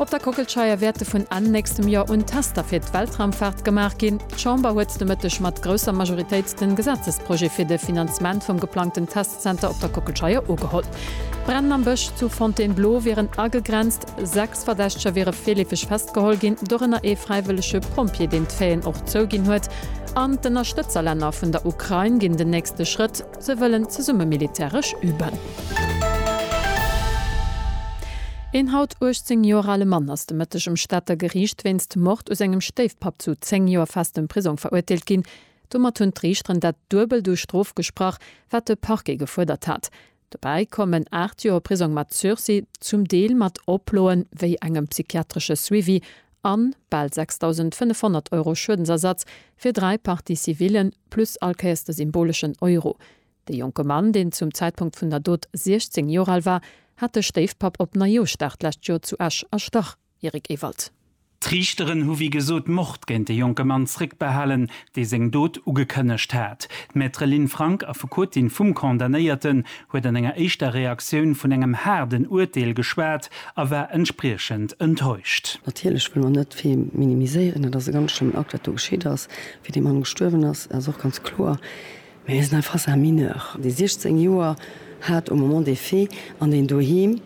Op der Kockelscheier wäerte vun Enn nächstem Joer un Tester fir d'Weltraumfaart gemaach ginn. D'Chamber huet de Mëtteg mat grousser Majoritéit de Gesetzesprojet fir de Finanzement vum geplangten Testzenter op der Kockelscheier ugeholl. D'Brennen am Bësch zu Fontainebleau wieren agegrenzt. Sechs Verdächteger wiere virleefeg festgeholl ginn, dorënner ee fräiwëllege Pompjee, deen d'Faiten och zouginn huet. An d'Ënnerstëtzerlänner vun der Ukrain ginn den nächste Schrëtt. Se wëllen zesumme militäresch üben. Een haut 18 Joer ale Mann ass de Mëtteg um Stater Geriicht wéinst Mord u sengem Stéifpapp zu 10 Joer festem Prisong verurteelt ginn. Domat hunn d'Riichteren dat Duebelt u Strof gesprach, wat de Parquet gefuerdert hat. Dobäi kommen 8 Joer Prisong mat Sursis, zum Deel mat Oploen, wéi engem psychiatresche Suivi an bal 6.500 Euro Schuedensersatz fir dräi Parties civillen, plus allkéiers de symboleschen Euro. De jonke Mann, deen zum Zäitpunkt vun der Dot 16 Joer al war, hat de Stéifpapp op Neijooschdag d'lescht Joer zu Esch erstach, Eric Ewald. D'Riichteren hu wéi gesot Mord géint de jonke Mann zréckbehalen, dee seng Dot ugekënnegt hat. D'Maître Lynn Frank, Affekotin vum Condamnéierten, huet an enger éischter Reaktioun vun engem haarden Urteel geschwat. a war entspriechend enttäuscht. Natierlech wëlle mer net vill minimiséieren. Et ass e ganz schlëmmen Akt, wat do geschitt ass. Wéi dee Mann gestuerwen ass, dat ass och ganz kloer. Mä mir sinn hei face à un mineur, dee 16 Joer hat au moment des faits an deen doheem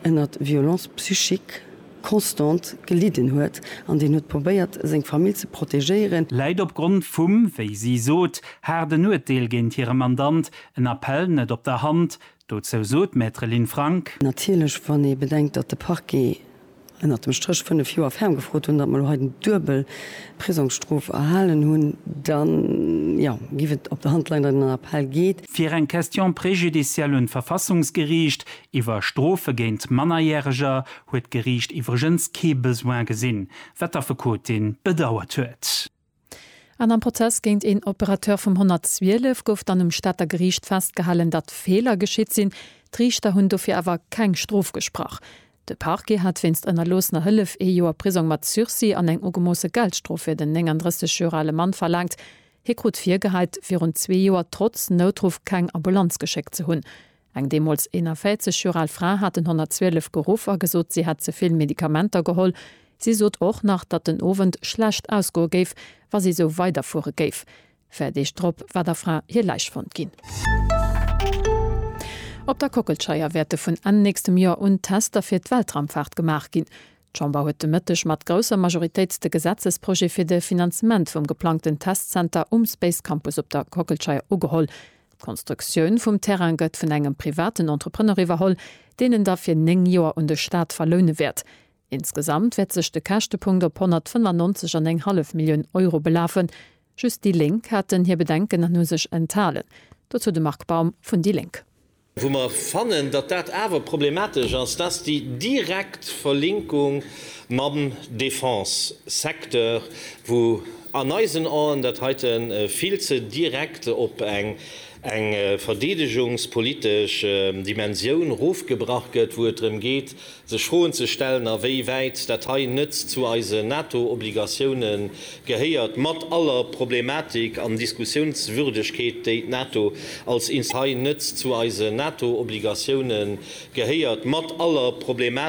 ënnert Violence psychique constante gelidden huet an deen huet probéiert, seng Famill ze protegéieren. Läit opgrond vum, wéi si sot, haarden Urteel géint hire Mandant en Appell net op der Hand, Dozou sot d'Maître Lynn Frank. Natierlech, wann ee bedenkt, datt de Parquet ënnert dem Stréch fënnef Joer ferm gefrot hunn, datt mer elo hei den duebel Prisongsstrof erhalen hunn, da jo, géif et op der Hand leien, datt een an Appell geet. Fir eng Question préjudicielle un d'Verfassungsgeriicht iwwer Strofe géint Mannerjäreger huet d'Geriicht iwwregens kee Besoin gesinn, wat d'Affekotin bedauert huet. An am Prozess géint een Operateur vum 112 gouf dann um Stater Geriicht festgehalen, datt Feeler geschitt sinn. D'Riichter hunn dofir awer keng Strof gesprach. De Parquet hat wéinst ënnerloossener Hëllef ee Joer Prisong mat Sursis an eng ugemoosse Geldstrof fir den 39 Joer ale Mann verlaangt. Hie krut virgeheit, virun zwee Joer trotz Noutruff keng Ambulanz geschéckt ze hunn. Eng deemools 41 Joer al Fra hat den 112 geruff a gesot, si hätt ze vill Medikamenter geholl. Si sot och nach, datt den Owend schlecht ausgoe géif, wa si esou weiderfuere géif. Véier Deeg drop war der Fra hir Läich fonnt ginn. Op der Kockelscheier wäerte vun Enn nächstem Joer un d'Tester fir d'Weltraumfaart gemaach ginn. D'Chamber huet de Mëtteg mat grousser Majoritéit de Gesetzesprojet fir de Finanzement vum geplangten Testzenter um Space Campus op der Kockelscheier ugeholl. D'Konstruktioun vum Terrain gëtt vun engem privaten Entrepreneur iwwerholl, deen en da fir 9 Joer un de Staat verloune wäert. Insgesamt wäert sech de Käschtepunkt op 195 an eng hallef Millioun Euro belafen. Just déi Lénk haten hir Bedenken an hu sech enthalen. Dozou de Marc Baum vun déi Lénk. Wou mer fannen, datt dat awer problematesch ass, dat ass déi direkt Verlinkung mam Defense-Secteur, wou, An eisen Aen dat heite vill ze direkt op eng eng verdeedegungspolitesch Dimensioun rofgebrach gëtt, wou et drëm geet, sech Froen ze stellen, a wéi wäit dat hei net zu eise NATO-Obligatiounë gehéiert, mat aller Problematik an Diskussiounswürdegkeet, déi d'NATO als Inst. Hei net zu eise NATO-Obligatiounë gehéiert, mat aller Problematik.